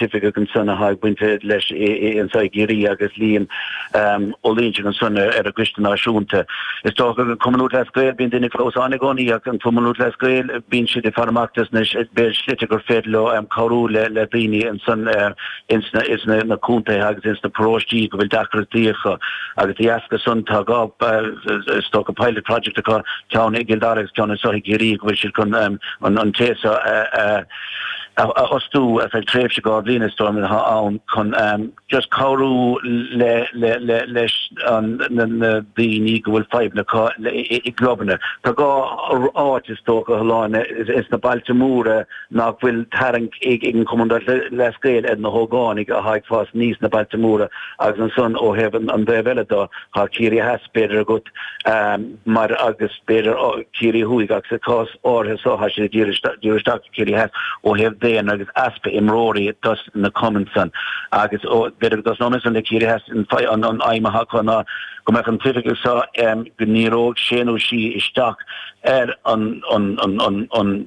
d'oifigigh ansan le haghaidh baint bheith leis anso i gCiarraí agus Liam Ó Loingsigh ansan ar an gCoiste Náisiúnta. Is dócha gur Cumann Lúthchleas Gael bíonn duine fós ann i gcónaí ach an Cumann Lúthchleas Gael bíonn siad ag faire amach féachaint an bhfuil slite gur féidir leo cabhrú le daoine ansan ins na contaetha agus ins na paróistí go bhfuil deacrachtaí acu. Agus de dheasca san tá dhá is dócha pilot project acu, ceann i gCill Dara agus ceann anso i gCiarraí go bhfuil siad chun an té seo a a fhostú ar feadh tréimhse dhá bhliain is dóigh liom atá ann chun just cabhrú leis na daoine go bhfuil fadhbanna acu i gclubanna. Tá dhá áit is dócha a Shláine is na bailte móra nach bhfuil tarraingt ag an Cumann Lúthchleas Gael ar na hógánaigh atá ag fás aníos sna bailte móra agus ansan ó thaobh an taobh eile de tá Ciarraí Theas b'fhéidir agat mar agus b'fhéidir, Ciarraí Thuaidh ach sa chás áirithe so tá sé ag díriú isteach ar Chiarraí Theas ó thaobh daonra agus easpa imreoirí dos na cumainn san agus b'fhéidir go dtosnóimid ansan le Ciarraí Theas an aidhm atá acu ná go mbeadh an t-oifigeach so go ndíreodh sé nó sí isteach ar an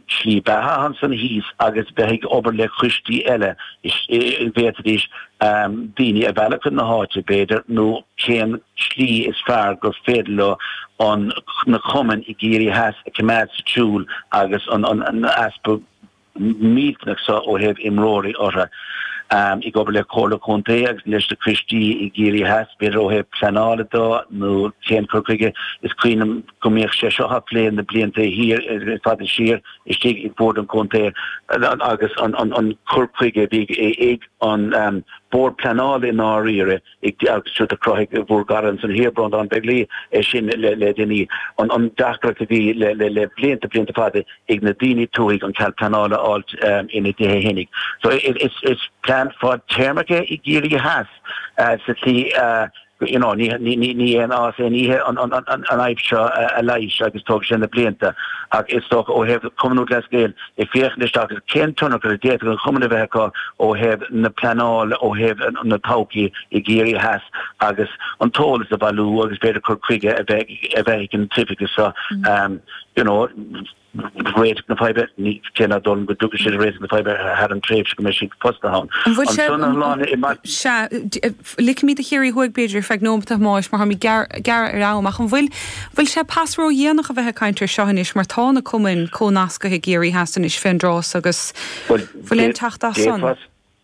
tslí beatha ansan thíos agus bheith ag obair le coistí eile is bhféadfaidís daoine a mhealladh chun na háite b'fhéidir nó cén tslí is fearr gur féidir leo an na cumainn i gCiarraí Theas a choimeád sa tsiúl agus an easpa millteanach seo ó thaobh imreoirí orthu. Ag obair le Comhairle Contae agus leis na coistí i gCiarraí Theas, b'fhéidir ó thaobh pleanála de nó cén cur chuige is cuimhin liom go mbíodh sé seo á phlé na blianta thiar fada siar istigh ag Bord an Chontae agus an cur chuige a bhí ag an Bord Pleanála i ndáiríre. ag agus siúd a chruthaigh bhur gcara ansan thiar Breanndán Begley é sin le le déanaí. An an deacracht a bhí le le le blianta blianta fada ag na daoine tuaithe an cead pleanála a fháilt ina dtithe féinig. So i i is is plean fadtéarmach é i gCiarraí Theas sa tslí a you know ní ní ní ní aon fhás aon oíche an an an an fhadhb seo a leighis agus tógfaidh sé na blianta ach is dócha ó thaobh Cumann Lúthchleas Gael ag féachaint isteach ar cén tionchar a d'fhéadfadh an Cumann a bheith acu ó thaobh na pleanála, ó thaobh na todhchaí i gCiarraí Theas agus an t-eolas a bhailiú agus b'fhéidir cur chuige a bheith a bheith ag an tOifigeach seo you know réiteach na faidhbe, ní, cé nach dóigh liom go dtiocfaidh siad ar réiteach na faidhbe thar an tréimhse go mbeidh siad fostaithe ann. An bhfuil sé, sea, Ligfimid do Chiarraí Thuaidh b'fhéidir ar feadh neomata a Thomáis mar táimid gearr ar am, ach an bhfuil bhfuil sé pas ró-dhéanach a bheith ag caint air seo anois mar tá na cumainn comhnascaithe i gCiarraí Theas anois fén dtráth so agus bhfuil aon teacht as san?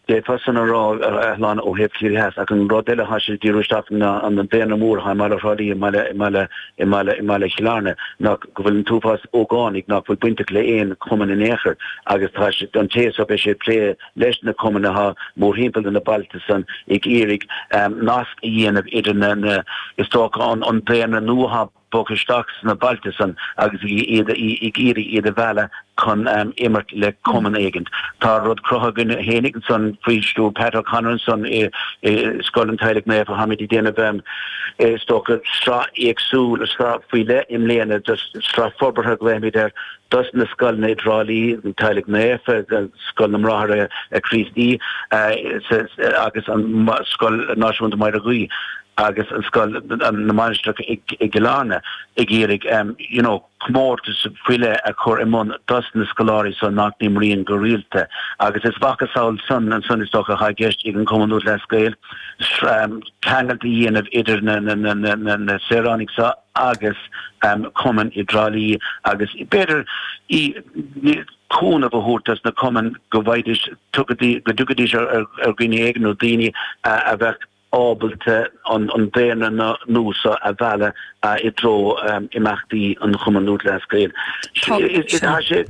D'fhéadfá san a rá, a Shláine, ó thaobh Chiarraí Theas, ach an rud eile atá sé díriú isteach ná an an daonra mór atá i mBaile Thrá Lí, i mBaile i mBaile i mBaile i mBaile Chill Airne ná go bhfuil an t-uafás ógánaigh ná fuil bainteach le aon chumann in aon chor agus tá sé an té so beidh sé ag plé leis na cumannacha mórthimpeall na bailte san ag iarraidh nasc a dhéanamh idir na, is dócha, an daonra nua atá bogtha isteach sna bailte san agus ag iarraidh iad a mhealladh chun imirt le cumann éigint. Tá rud cruthaithe againn féinig ansan faoi stiúir Pat O'Connor ansan i Scoil an Teaghlaigh Naofa, táimid ag déanamh, is dócha, sraith éagsúil, sraith faoi leith i mbliana de sraith forbartha a ghlaoimid air, dos na scoileanna i dTrá Lí, an Teaghlach Naofa, Scoil na mBráithre Críostaí agus Scoil Náisiúnta Mhaigh Dheirge agus Scoil na Mainistreach i gCill Airne, ag iarraidh you know comórtas faoi leith a chur i mbun dos na scoláirí so nach n-imríonn go rialta agus is mhacasamhail san ansan is dócha atá i gceist ag an Chumann Lúthchleas Gael, ceangailt a dhéanamh idir na saoránaigh so. agus cumainn i dTrá Lí agus b'fhéidir cúnamh a thabhairt dos na cumainn go bhfaighidís, go dtiocfaidís ar dhuine éigin nó daoine a bheadh ábalta an daonra nua so a mhealladh i dtreo imeachtaí an Chumann Lúthchleas Gael. Tá sé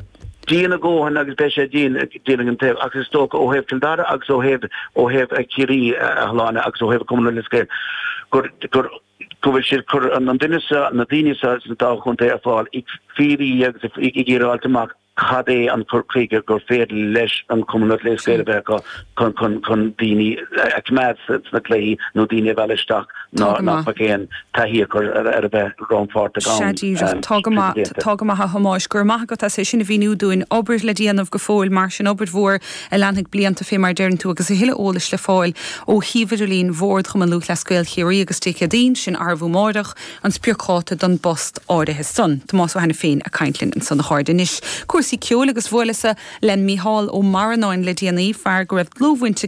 dian a dhóthain agus beidh sé dian a dhéanamh ach is dócha ó thaobh Chill Dara agus ó thaobh Chiarraí, a Shláine, agus ó thaobh an Chumann Lúthchleas Gael gur, go bhfuil siad ag cur an duine seo, na daoine seo sna dá chontae ar fáil ag fiafraí agus ag iarraidh fháilt amach cad é an cur chuige gur féidir leis an Cumann Lúthchleas Gael a bheith acu chun chun chun daoine a coimeád sna cluichí nó daoine a mhealladh isteach nach mbeadh aon taithí acu ar ar ar a bheith rannpháirteach ann. Tá go maith a Thomáis, go raibh maith agat as é sin a mhíniú dúinn, obair le déanamh go fóill mar sin, obair mhór a leanfaidh blianta fé mar a deireann tú agus a thuilleadh eolais le fáil ó shuíomh idirlín Bhord Chumann Lúthchleas Gael Chiarraí agus Dé Céadaoin sin arbh fhiú máireach an spriocdháta don bpost áirithe san. Tomás Ó hAiniféin ag caint linn ansan. A chairde anois cúrsaí ceoil agus bhuaileas-sa le Mícheál Ó Mearanáin le déanaí, fear go raibh dlúthbhaint aige